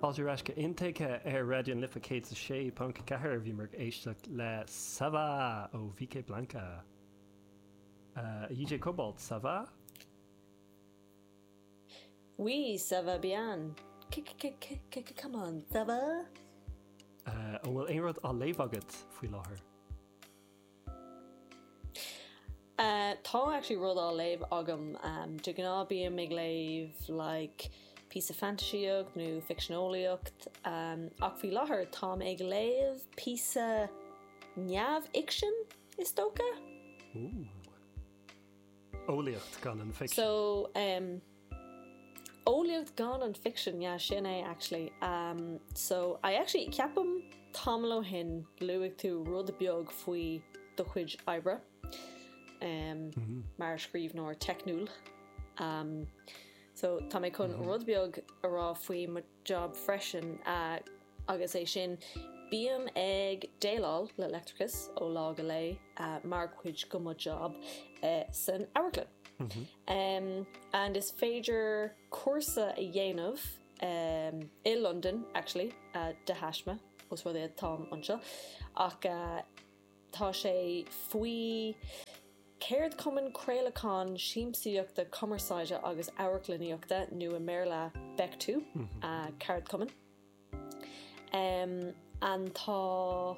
Fáilte ar ais go Intuigthe ar Raidió na Life 106.4. Bhíomar ag éisteacht le Ça Va ó VK Blanka. Uh, DJ Cobalt, ça va? Oui, ça va bien. Come on, ça va? Uh, an bhfuil aon rud á léamh agat faoi láthair? Tá actually rud á léamh agam. De ghnáth bím ag léamh like píosa fantaisaíocht nó ficsean eolaíochta ach faoi láthair táim ag léamh píosa neamhfhicsean is dócha. Ooh. Eolaíocht gan an ficsean. So eolaíocht gan an ficsean, yeah, sin é actually. Um, so I actually, ceapaim tamall ó shin luaigh tú rud beag faoi do chuid oibre, um, mar scríbhneoir teicniúil. Um, so tá mé chun rud beag a rá faoi mo. job freisin agus é sin Bím ag déileáil le leictreachas ó lá go lá mar chuid de mo job san amharclann and is féidir cúrsa a dhéanamh i Londain actually de thaisme os rud é táim anseo ach Tá sé faoi Cheardchumann Craolacháin Siamsaíochta Cumarsáide agus Amharclannaíochta, nó i mBéarla BECTU, an ceardchumann. Um, tá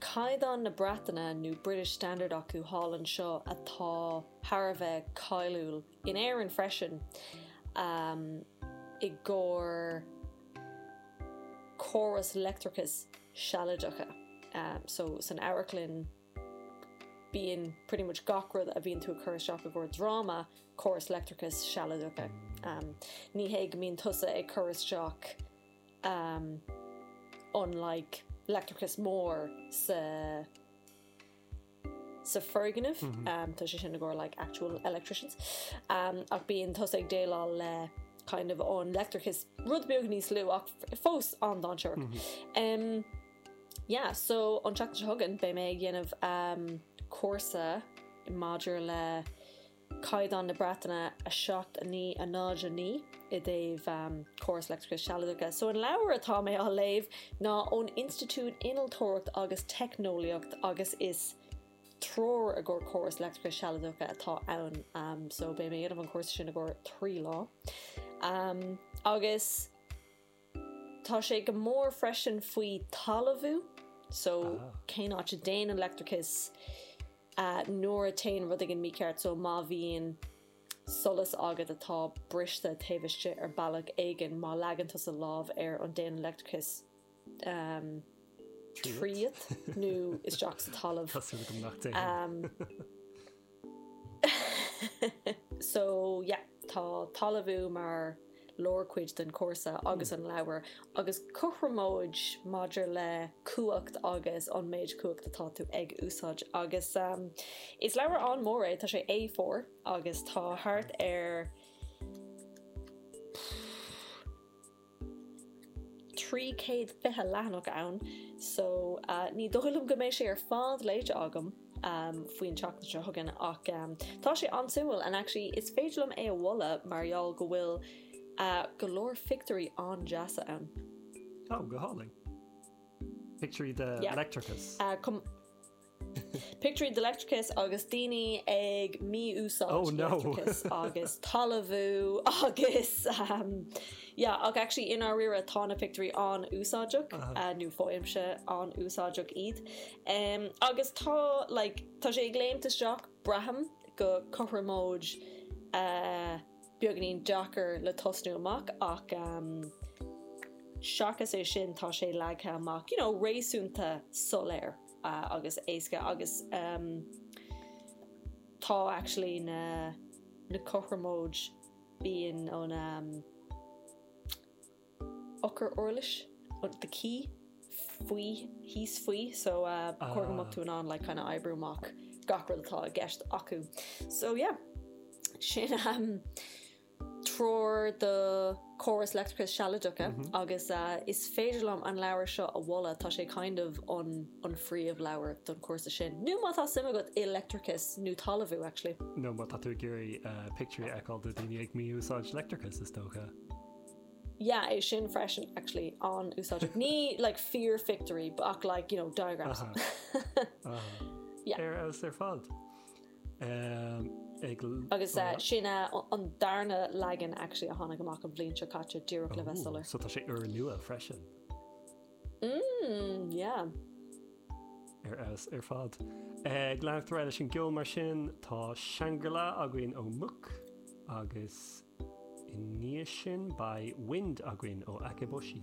caighdeán na Breataine nó British Standard acu thall anseo atá thar a bheith cáiliúil in Éirinn freisin i gcomhair córas leictreachais sealadacha. So san amharclann bíonn pretty much gach rud a bhíonn tú ag cur isteach i gcomhair dráma córas leictreachais sealadacha. Ní hé go mbíonn tusa ag cur isteach an like leictreachas mór sa sa foirgneamh, tá sé sin i gcomhair like actual electricians, ach bíonn tusa ag déileáil le kind of an leictreachas rud beag níos lú ach fós an-dainséarach. Yeah, so an tseachtain seo chugainn beidh mé ag dhéanamh cúrsa maidir le Caighdeán na Breataine a 7 9 a 0 9 i dtaobh Córas Leictreachais Sealadacha. So an leabhar atá mé á léamh ná ón Institiúid Innealtóireacht agus Teicneolaíocht agus is Treoir i gcomhair Córas Leictreachais Sealadacha atá ann so beidh mé a dhéanamh an cúrsa sin i gcomhair trí lá agus Tá sé go mór freisin faoi talamhú so cén áit a dtéann an leictreachas nuair a théann rud éigin mícheart so má bhíonn solas agat atá briste taobh istigh ar bealach éigin má leagann tú do lámh air an dtéann an leictreachas. Tríot nó isteach sa talamh. Tá súil agam nach dtéann. So yeah, tá talamhú mar lárchuid den chúrsa agus an leabhar agus cothromóid maidir le cumhacht agus an méid cumhacht atá tú ag úsáid. Agus is leabhar an-mhór é, tá sé A4 agus tá thart ar 320 leathanach ann so ní dóigh liom go mbeidh sé ar fad léite agam faoin tseachtain seo chugainn ach tá sé an-suimiúil and actually is féidir liom é a mholadh mar gheall go bhfuil go leor pictiúirí an-deasa ann. Oh, go hálainn. Pictiúirí de leictreachas? Pictiúirí de leictreachas agus daoine ag mí-úsáid leictreachas agus talamhú agus yeah ach actually i ndáiríre tá na pictiúirí an-úsáideach nó faighimse an-úsáideach iad. Agus tá like tá sé ag léimt isteach braithim go cothromóid beagáinín deacair le tosnú amach ach seachas é sin tá sé leagtha amach you know réasúnta soiléir. agus éasca agus tá actually na cothromóid bíonn an eochair uirlis, the key, faoi, thíos faoi so cóir go mbeadh tú in ann like kind of oibriú amach gach rud atá i gceist acu. So yeah, sin. treoir do córas leictreachais sealadacha agus is féidir liom an leabhar seo a mholadh, tá sé kind of an an phríomh leabhar don chúrsa sin nó má tá suim agat i leictreachas nó talamhú actually. nó má tá tú ag iarraidh pictiúirí a fheiceáil do daoine ag mí-úsáid leictreachais is dócha. yeah é sin freisin actually an-úsáideach ní like fíorphictiúirí ach like you know diagrams. aha aha yeah. ar fheabhas ar fad. Agus sin an darna leagan actually a tháinig amach an bhliain seo caite díreach le bheith soiléir. So tá sé úrnua freisin. Mmm yeah. Ar fheabhas ar fad. Go leanfar leis an gceol mar sin, tá Shangri-La againn ó Mook agus i ndiaidh sin beidh Wind againn ó Akeboshi.